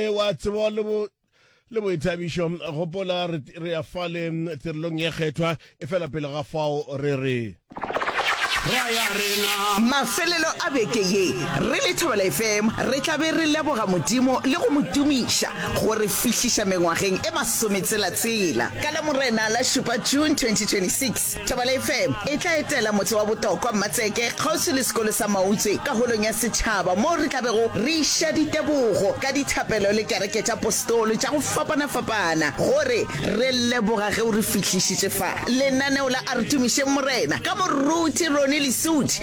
E, wa tseba le bo le boithabišo gopola re, re ya fale tirelong ye kgethwa e fela pele ga fao re re Mafelelo a beke ye, re le Thobela FM re tla be re leboga Modimo le go mo tumiša go re fihliša mengwageng e masometselatsela. Ka Lamorena la šupa, June 2026, Thabala FM e tla etela motse wa Botokwa, Mmatseke, kgauswi le sekolo sa Mautswe ka Holong ya Setšhaba moo re tla bego re iša ditebogo ka dithapelo le kereke tša postolo tša go fapana-fapana gore re leboga ge o re fihlišitše fa. Lenaneo la A Re Tumišeng Morena ka moruti Ronnie Lesuthi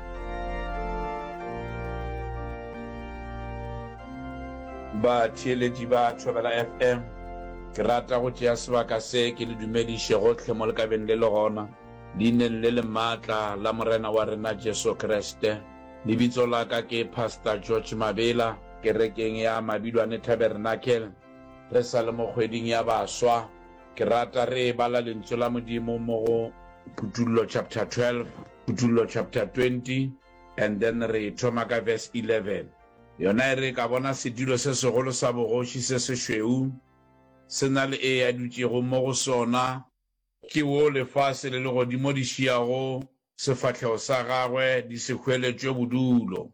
Batheeletši ba Thobela FM, ke rata go tšea sebaka se ke le dumediše gohle mo le ka beng le le gona. Leineng le le maatla la Morena wa rena Jesu Kriste, lebitso la ka ke Pastor George Mabela, kerekeng ya Mabilwane Tabernacle, re sa le mo kgweding ya baswa. Ke rata re bala Lentswe la Modimo mo go Kutollo chapter 12, Kutollo chapter 20, and then re thoma ka verse 11. Yona e re, Ka bona setulo se segolo sa bogoši se sešweu se na le Ee a dutšego mo go sona, ke wo lefase le legodimo di šiago sefahlego sa gagwe di se hweletšwe bodulo.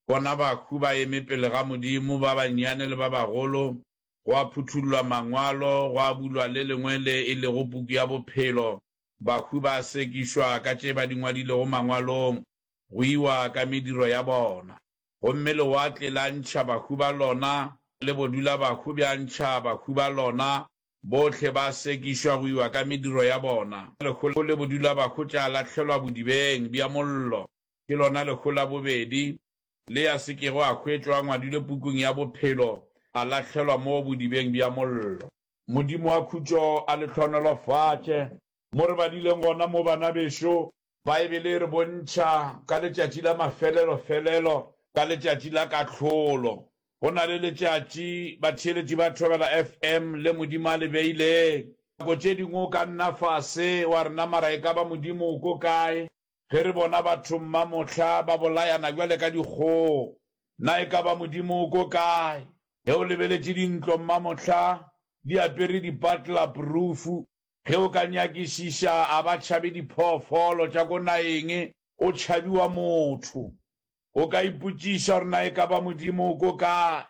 Bona bahu ba eme pele ga Modimo, ba bannyane le ba bagolo, gwa phuthullwa Mangwalo, gwa bulwa le lengwe le e lego Puku ya Bophelo, bahwi ba sekišwa ka tše ba di ngwadilego Mangwalong, go iwa ka mediro ya bona. Gomme lewatle la ntšha bahwi ba lona, le bodulabahwi bja ntšha bahwi ba lona, bohle ba sekišwa go iwa ka mediro ya bona. Lehu le bodulabahwi tša lahlelwa bodibeng bja mollo. Ke lona lehu la bobedi, le ya se kego a hwetšwa a ngwadilwe pukung ya bophelo, a lahlelwa mo bodibeng bja mollo. Modimo wa khutšo a le hlohonolofatše. Mo re badileng gona mo, banabešo, Baebele e re bontšha ka letšatši la mafelelo-felelo, ka letšatši la kahlolo. Go na le letšatši batheeletši ba Thobela FM le Modimo a le beilego. Nako tše dingwe o ka nna fase wa re, Namara e ka ba Modimo o ko kae? Ge re bona batho mma mohla ba bolayana bjale ka dikgogo, na e ka ba Modimo o ko kae ge o lebeletše dintlo mma mohla di apere dipatla prufu? Ge o ka nyakišiša, a ba tšhabe diphoofolo tša ko nageng, go tšhabiwa motho. O ka ipotšiša gore na e ka ba Modimo o ko kae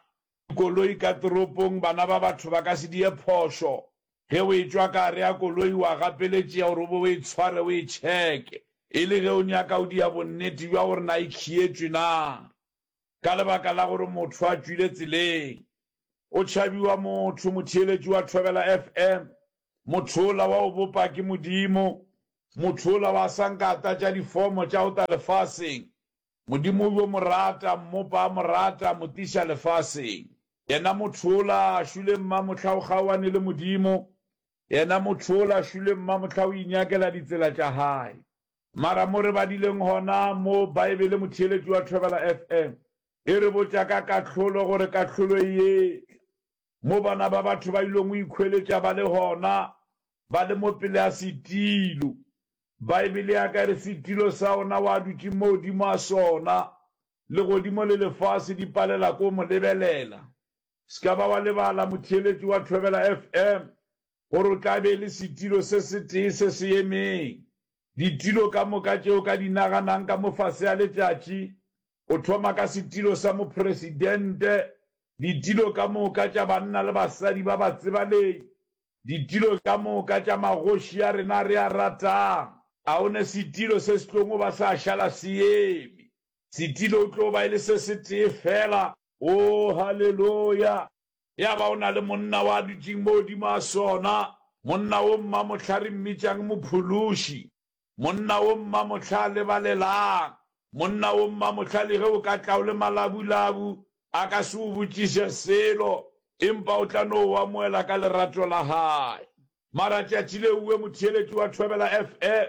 Koloi ka toropong, bana ba batho ba ka se di ye phošo. Ge o e tšwa ka gare ga koloi, o a gapeletšea gore o be o e tshware o e tšheke, e le ge o nyaka o dia bonnete bja gore na e khietšwe na. Ka lebaka la gore motho a tšwile tseleng. O tšhabiwa motho, motheeletši wa Thobela FM. Motho ola wa go bopa ke Modimo. Motho ola wa sa nka a tlatša difomo tša go tla lefaseng. Modimo o yo mo rata, Mmopa a mo rata, mo tliša lefaseng. Yena motho ola a šwile mmamohla o kgaoane le Modimo, yena motho ola a šwile mmamohla o inyakela ditsela tša hae. Mara mo re badileng gona mo, Baebele motheeletši wa Thobela FM e re botša ka kahlolo gore kahlolo e yetla. Mo bana ba batho ba ilong go ikhweletša ba le gona, ba le mo pele ga setilo, Baebele ya ka e re, Setilo sa ona o a dutše mo godimo a sona, legodimo le lefase di palela ko mo lebelela. Se ka ba wa lebala, motheeletši wa Thobela FM, gore o tla be e le setilo se setee se se emeng. Ditilo ka moka tše o ka di naganang ka mo fase ga letšatši, go thoma ka setilo sa mopresidente, ditilo ka moka tša banna le basadi ba batsebalegi, Ditilo ka moka tša magoši a rena re a ratang, a go na setilo se se tlogo ba sa šala se eme? Setilo o tlo ba e le se setee feela. Oo, haleloya! Ya ba go na le monna wa dutšeng mo godimo ga sona, monna wo mma mohla re mmitšang Mophološi. Monna wo mmamohla lebalelang monna wo mmamohla le ge o ka tla o le malabulabu a ka se o botšiše selo empa o tla no o amoela ka lerato la gae. Mara tšatši le uwe motheeletši wa Thobela FM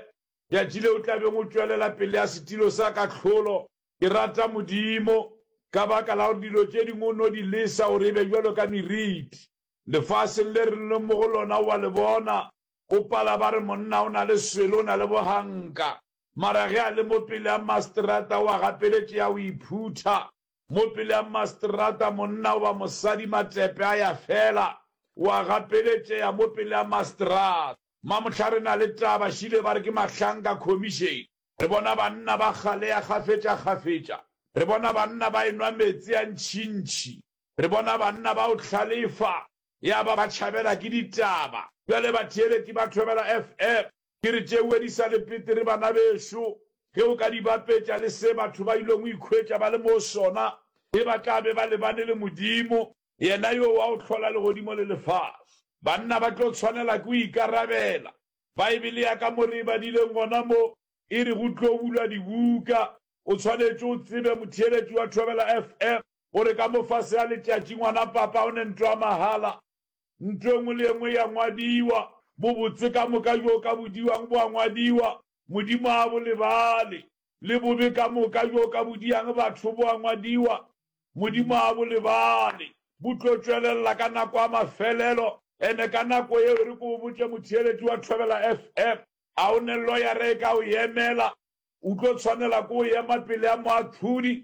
tšatši le o tla beng o tšwelela pelea setilo sa kahlolo ke rata Modimo ka baka la gore dilo tše dingwe o no di lesa gore e be bjalo ka meriti lefaseng le re leng mo go lona o a le bona O pala ba re monna o na le swele, o na le boganka. Mara ge a le mo pele a masterata o a gapeletše a o iphutha. Mo pele a masterata monna goba mosadi matepe a ya fela. O a gapeletšea mo pele a masterata. Mamohla re na le taba, šile ba re ke mahlanka khomišene. Re bona banna ba galea kgafetšakgafetša. Re bona banna ba enwa meetse a ntšhintšhi. Re bona banna ba o hlalefa. Ya ba ba tšhabela ke ditaba. Bjale batheeleki ba thobela FM. Ke re tšeue di sa le petere banabešo. Ge o ka di bapetša le se batho ba ilego ikhwetša ba le mo sona ge ba tla be ba lebane le Modimo, Yena yo wa go hlola legodimo le lefase. Banna ba tlo tshwanela ke go ikarabela. Baebele ya ka mo re e badileng gona mo, e re go tlo bulwa dibuka. O tshwanetše o tsebe, motheeletši wa Thobela FM, gore ka mofase ga letšatši ngwana papa o ne ntlo ya mahala, ntlo engwe le engwe ya ngwadiwa, bobotse ka moka bjo ka bodiwang bo a ngwadiwa, Modimo ga bo lebale, le bobe ka moka bjo ka bodiyang batho bo a ngwadiwa, Modimo ga bo lebale, bo tlo tšwelelela ka nako ya mafelelo. Ene ka nako yeo, e re ke go botše motheeletši wa Thobela FM, a o ne loyara e ka o yemela? O tlo tshwanela ke go ema pele ga moahlodi,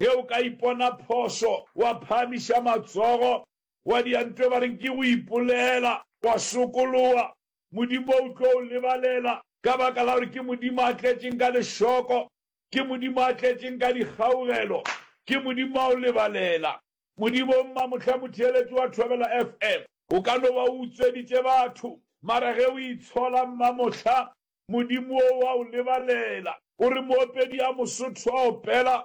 Ge o ka ipona phošo, wa phahamiša matsogo, wa diantwe ba reng ke go ipolela, wa sokoloa, Modimo o tlo o lebalela, ka baka la gore ke Modimo a tletšeng ka lešoko, ke Modimo a tletšeng ka dikgaugelo, ke Modimo wa go lebalela. Modimo o mmamohla motheeletši wa Thobela FM. O ka no ba o utsweditše batho, mara ge o itshola mmamohla, Modimo o a o lebalela. O re moopedi a Mosotho a opela,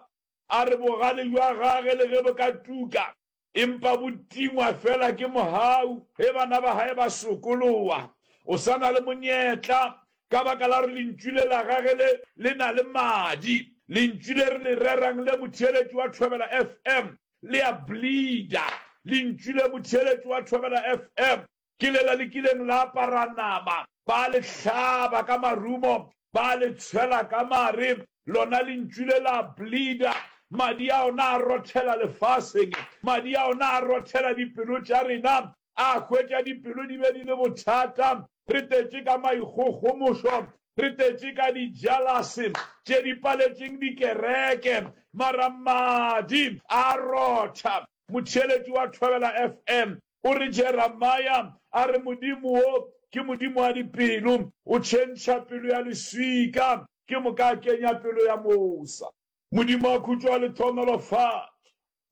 a re bogale bja gage le ge bo ka tuka, empa bo tingwa fela ke mohau. Ge bana ba gae ba sokoloa, o sa na le monyetla, ka baka la gore lentšu le la gage le, le na le madi. Lentšu le re le rerang le motheeletši wa Thobela FM, le a bleeder. Lentšu le motheeletši wa Thobela FM, Ke lela le kileng la apara nama, ba le hlaba ka marumo, ba le tshwela ka mare, lona lentšu le la bleeder, madi a ona a rothela lefaseng, madi a ona a rothela dipelo tša rena, a hwetša dipelo di be di le bothata, re tetše ka maikgogomošo, re tetše ka dijalase tše di paletšeng dikereke, mara madi a rotha. Motheeletši wa Thobela FM O re Jeremia a re Modimo wo ke Modimo wa dipelo, o tšhentšha pelo ya leswika, ke moka a kenya pelo ya mosa. Modimo a khutšo wa lethomelo fa.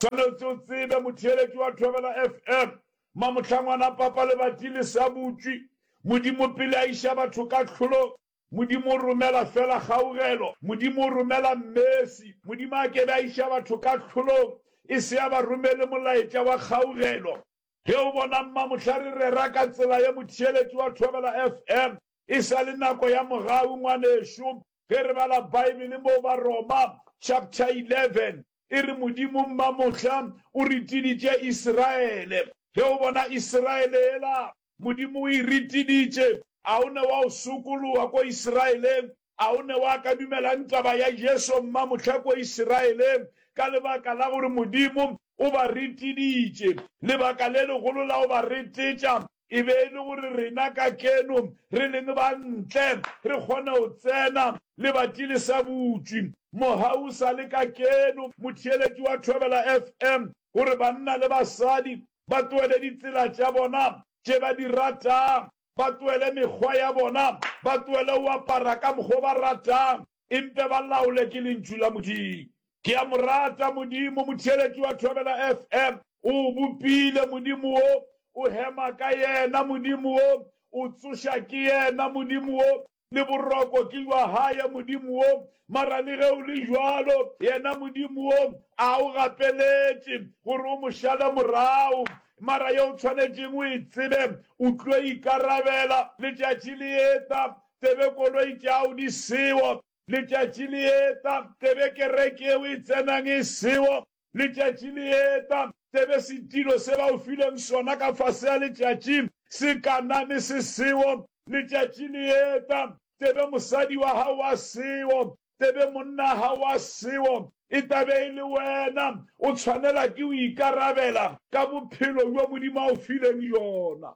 Swanetše o tsebe, motheeletši wa Thobela FM, Mamohlangwana Papa Lebati le sa butšwi, Modimo pele a iša batho kahlolong, Modimo o romela fela kgaugelo, Modimo o romela Mmesi. Modimo a kebe a iša batho kahlolong e se a ba romele molaetša wa kgaugelo. Ge o bona mma, mohla re rera ka tsela ye motheeletši wa Thobela FM, e sa le nako ya mogau, ngwanešu, ge re bala Baebele mo Baroma chapter 11, e re Modimo mma mohla o retiditše Israele. Ge o bona Israele yela, Modimo o e ritiditše. A o ne wa o sokologa ko Israeleng? A o ne wa ka dumelang taba ya Jesu mma mohla ko Israeleng? Ka lebaka la gore Modimo o ba ritiditše. Lebaka le legolo la go ba ritetša e be e le gore rena kakeno re leng ba ntle re kgone go tsena lebati le sa butšwi. Moha o sa le kakeno, motheeletši wa Thobela FM o re banna le basadi ba tloele ditsela tša bona tše ba di ratang, ba tloele mekgwa ya bona, ba tloele go apara ka mokgwa o ba ratang, empe ba laolwe ke Lentšu la Modimo. Ke a mo rata Modimo, motheeletši wa Thobela FM. O o bopile, Modimo wo. O hema ka Yena, Modimo wo. O tsoša ke Yena, Modimo wo. le boroko ke jwa Haye Modimo wo, mara le ge o le jwalo, Yena Modimo wo a o gapeletše gore o Mo šale morago. Mara ye o tshwanetšeng o e tsebe, o tlo ikarabela. Letšatši le eta, tsebe koloi tša'o di sewo. Letšatši le eta, tsebe kereke yeo e tsenang e sewo. Letšatši le eta, tsebe setilo se ba o fileng sona ka fase ya letšatši se kaname se seo. Letšatši le eta, tsebe mosadi wa gago a seo, tsebe monna wa gago a seo. E tla be e le wena o tshwanela ke go ikarabela ka bophelo bjo Modimo a o fileng bjona.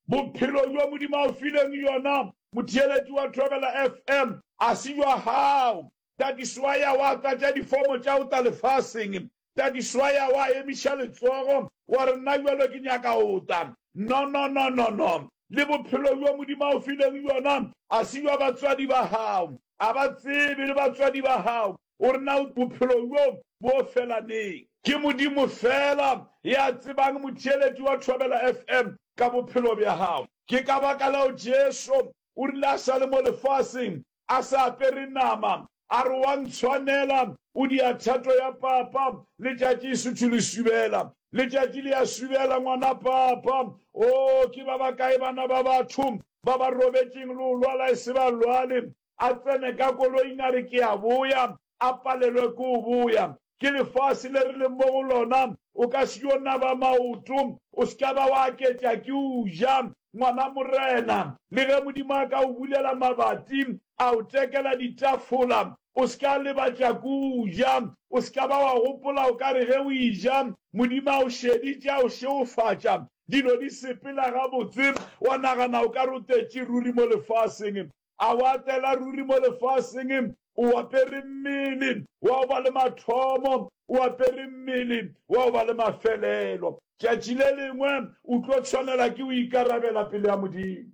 Bophelo bjo Modimo a o fileng bjona, motheeletši wa Thobela FM, ga se bja gago. Tadiswa ya wa tlatša difomo tša go tla lefaseng. Tadiswa ya wa emiša letsogo, wa re, Nna jwalo ke nyaka go tla. No, no, no, no, no. Le bophelo bjo Modimo a go filego bjona a se bja batswadi ba gago. A ba tsebe le batswadi ba gago gore na bophelo bjo bo fela neng. Ke Modimo fela ya tsebang motheeletši wa Thobela FM ka bophelo bja gago. Ke ka baka leo Jesu o rile a sa le mo lefaseng a sa apere nama, a re wa ntshwanela, o dia thato ya papa, letšatši e suthu le subela, letšatši le ya subela ngwana papa, oo ke ba ba kae bana ba batho ba ba robetšeng le o lwala e se ba lwale, a tsene ka koloing a re ke a boya, a palelwe ke go boya. Ke lefase le re leng mo go lona. O ka se yo naba maoto, o se ka ba wa aketša ke o ja, ngwana morena. Le ge Modimo a ka o bulela mabati, a o tekela ditafola, o se ka lebatša ke o ja. O se ka ba wa gopola o ka re ge o e ja, Modimo a o šeditše, a o šegofatša. Dilo di sepela gabotse, wa nagana o ka re o tetše ruri mo lefaseng. A o atela ruri mo lefaseng, o apere mmele wa go ba le mathomo, o apere mmele wa go ba le mafelelo. Tšatši le lengwe o tlo tshwanela ke go ikarabela pele ga Modimo.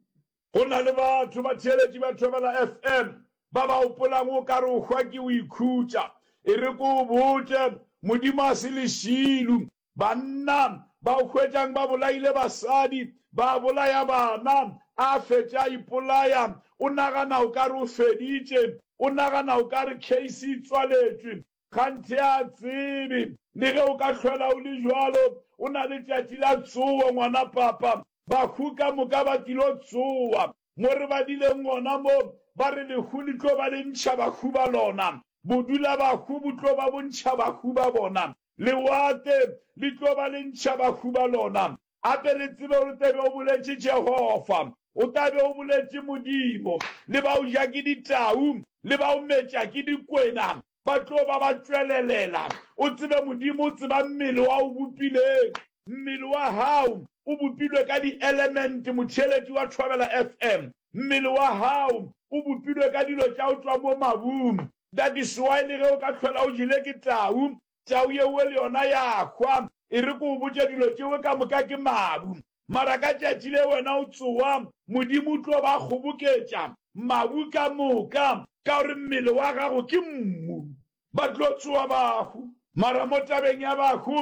Go na le batho, batheeletši ba Thobela FM, ba ba gopolang o ka re o hwa ke go ikhutša. E re ke o botše, Modimo ga se lešilo, Banna ba hwetšang ba bolaile basadi, ba bolaya bana, a fetše a ipolaya. O nagana o ka re o feditše, o nagana o ka re case e tswaletšwe. Kganthe a tsebe, le ge o ka hlwela o le bjalo, o na le tšatši la tsowo, ngwana papa. Bahu ka moka ba tlilo tsowa. Mo re badileng gona mo, ba re lehu le tlo ba le ntšha bahu ba lona, bodulabahu bo tlo ba bo ntšha bahu ba bona, lewatle le tlo ba le ntšha bahu ba lona. Gape re tsebe gore o tla be o boletše Jehofa, o tla be o boletše Modimo, le ba o ja ke ditau, le ba o metša ke dikwena, ba tlo ba ba tšwelelela. O tsebe Modimo o tseba mmele wa o bopileng. Mmele wa hao o bopilwe ka di-element, motšheletši wa Thobela FM. Mmele wa hao o bopilwe ka dilo tša o tšwa mo mabung. That is why le ge o ka hlola o jele ke tau, tau yewe le yona ya hwa. E re ke o botše dilo tšewe ka moka ke mabu. Mara ka tšatši le wena o tsowa, Modimo o tlo ba kgoboketša, mabu ka moka, ka gore mmele wa gago ke mmu. Ba tlo tsowa bahu. Mara mo tabeng ya bahu,